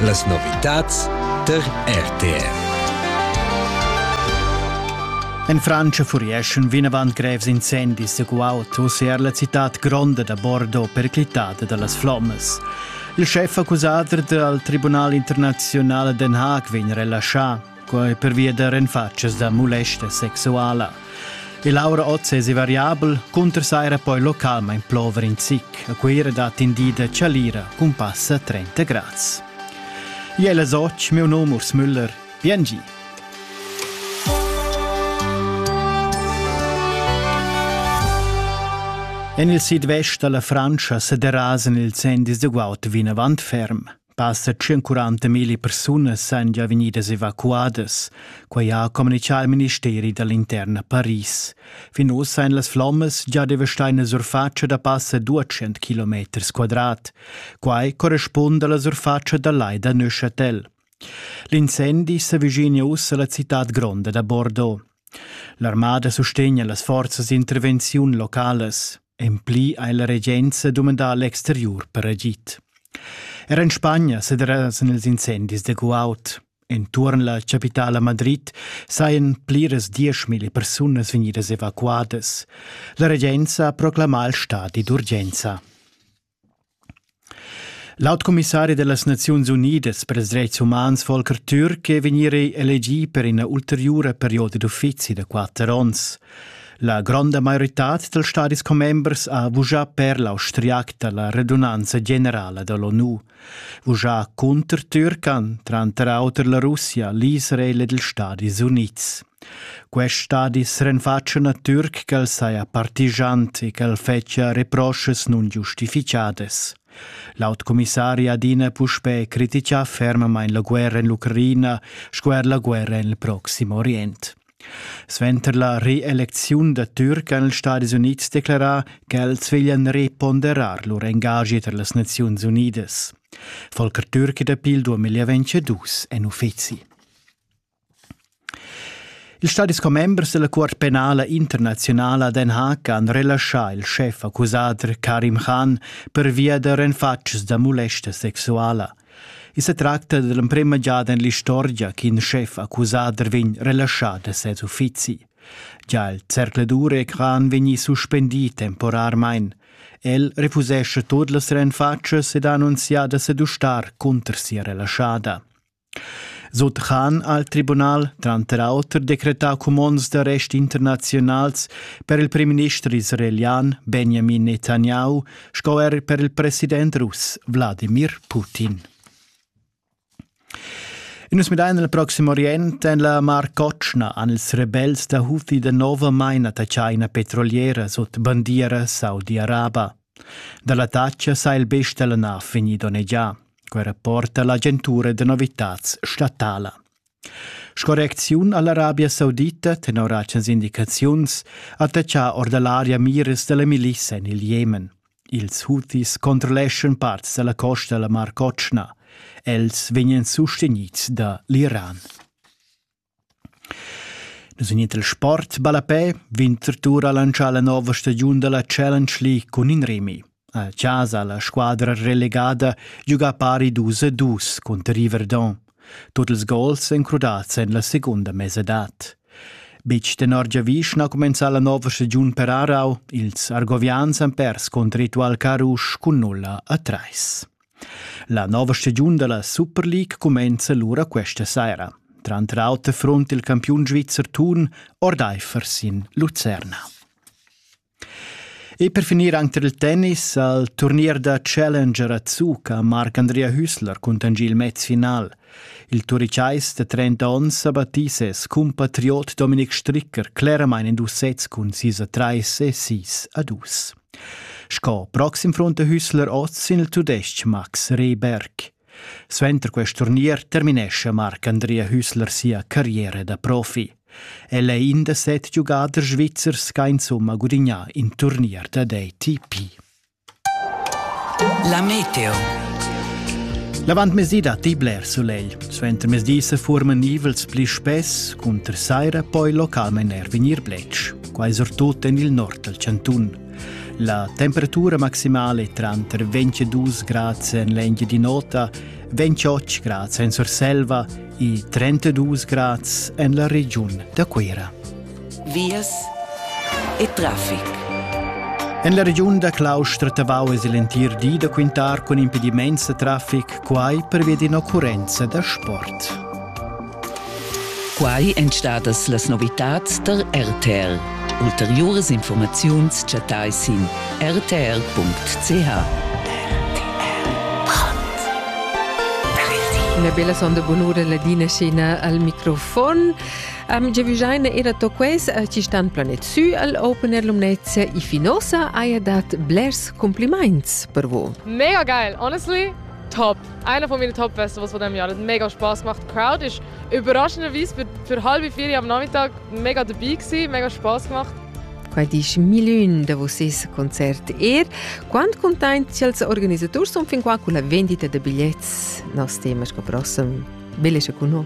Las novitads tar RTV. En Francia furieschan vinavant grevs incendis sco autos er la citad gronda da Bordeaux perclitada da las flommas. Il schef accusader dal Tribunal internaziunal a Den Haag vegn relaschà. quai pervia da renfatschas da mulesta sexuala. Il aura oz es variabel, cunter saira poi localmain plover in zic. A Cuira dat indida chalira cun passa 30 grads. Jela Soc, meu num Urs Müller, biengi. En il sidvest da la Frantscha sa derasan ils endis da guaud vinavant ferm. Passa 140 mila persunas san gia vegnidas evacuadas. Quai ha communitgà il ministeri da l'intern a Paris. Fin oz ein las flommas già devastai la surfatscha da passa 200 km quadrat. Quai correspunda alla surfatscha da lai da Neuchâtel. L'incendi s'avvicina ussa alla cittad gronda da Bordeaux. L'armada sustegna las forzas d'intervenziun localas. En pli ha la regenza dumandà l'exteriur per agid. Er en Spagna se derasan els incendis de guaut. Entuorn la capitala Madrid sajan pliras dieschmilli persunas vegnidas evacuadas. La regenza ha proclamà il stadi d'urgenza. L'aut commissari da las Naziuns Unidas per ils dretgs umans Volker Türk è vegnì elegì per ina ulteriura perioda d'uffizi da quatter onns. La gronda maioritad dals stadis commembers ha vuschà per l'austriac da la redunanza generala da l'ONU. Vuschà cunter Türkan, tranter auter la Russia, l'Israel ed ils Stadis Unids. Quest stadi s'renfatscha natür ch'el saja partigiant e ch'el fetschia reproschas nungiustifichadas. L'aut commissari adina puspè critichà fermamain la guerra en l'Ucraina sco er la guerra en il Proxim Orient. Suenter la reelecziun da Türk han ils Stadis Unids declarà ch'els veglian reponderar lur engagi tar las Naziuns Unidas. Volker Türk da pil 2022 en uffizi. Ils stadis commembers dalla Cuort penala internaziunala Den Haag han relaschà il schef accusader Karim Khan pervia da renfatgs da mulesta sexuala. I se tracta dell'emprema giada en l'istorgia ch'in schef accusader vegn relaschà da ses uffizi. Già il zercledure Khan vegni suspendì temporarmain. El refusesce tot las renfatschas ed ha annunzià da sedustar cunter sia relaschada. Sut Khan ha il tribunal tranter auter decretà cumonds d'arrest internaziunals per il primminister israelian Benjamin Netanyahu sco er per il president russ Wladimir Putin. Nus midain il proxim orient en la Mar Cotschna han ils rebels da Houthi da nov maina da China petroliera sut bandiera Saudi-Arabia. Da l'attacca sa il best da la nav vegnì donnegià. Quei rapporta l'agentura da novitads statala. Sco reacziun all'Arabia Saudita tenor agens indicaziuns attacca or dall'aria miras dalla milisa en il Jemen. Ils Houthis controlleschan parts dalla costa dalla Mar Cotschna. Els vegnan sustenids da l'Iran. Nus vegnin dal sport ballapè vegn Tortura lantschà la nova stagiun da la Challenge League cun in remi. A chasa la squadra relegada giuga pari dus a dus cunter Riverdon. Tut ils gols èn crudads en la segunda mesadad. Betg tenor giavisch na cumenzà la nova stagiun per Aarau. Ils Argovians han pers cunter Ritual Carusch cun nulla a trais. La nova stagiun dalla Super League cumenza lura questa saira. Tranter auter front il campiun svizzer Thun ordeifer sin Lucerna. E per finir anche il tennis al turnier da Challenger a Zuca Marc-Andrea Hüssler contangi il match final. Il turicais de 30 onns ha battì ses cumpatriot Dominik Stricker cleramain in dus sets cun sis a trais e sis a dus. Sco proxim front da Hüssler oz sin il tudestg Max Rehberg. Suenter quest turnier terminesce Marc Andrea Hüssler sia carriera da profi. El è in da set giugaders svizzers che insomma gudigna in turnier da DTP. La Meteo L'avantmezdi datti bler sulegl. Suentermezdi se forman nivels pli spess, cunter saira poi localmain er vegnir bletsch. quai surtut en il nord dal chantun. La temperatura maximale è tranter 22 grads en l'Engie di Nota, 28 grads en Surselva e 32 grads en la regiun da Cuira. Vias e traffic. En la regiun da Claustra Tavau es il entir di da quintar cun impediments da traffic, quai pervia d'ina occurrenza da sport. Quai èn stadas las novitads tar RTL. Ulteriuras informaziuns chattai sin rtl.ch. Una bella sonda bonura ladina scena al microfon. Am giavigiaina era to quais a ci stan planet sü al Open Air Lumnezia i finosa haja dat blers complimaints per vo. Mega geil, honestly! top. Einer von meinen Top-Feste, was von dem Jahr. Das hat mega Spaß gemacht. Die Crowd war überraschenderweise für, für halb vier am Nachmittag mega dabei gewesen, mega Spaß gemacht. Quel dice Milun da vossas Konzert er. Quant contenti als organisators son fin qua con la vendita de bigliettes? Nos tema sco prossem. Bellezza con noi.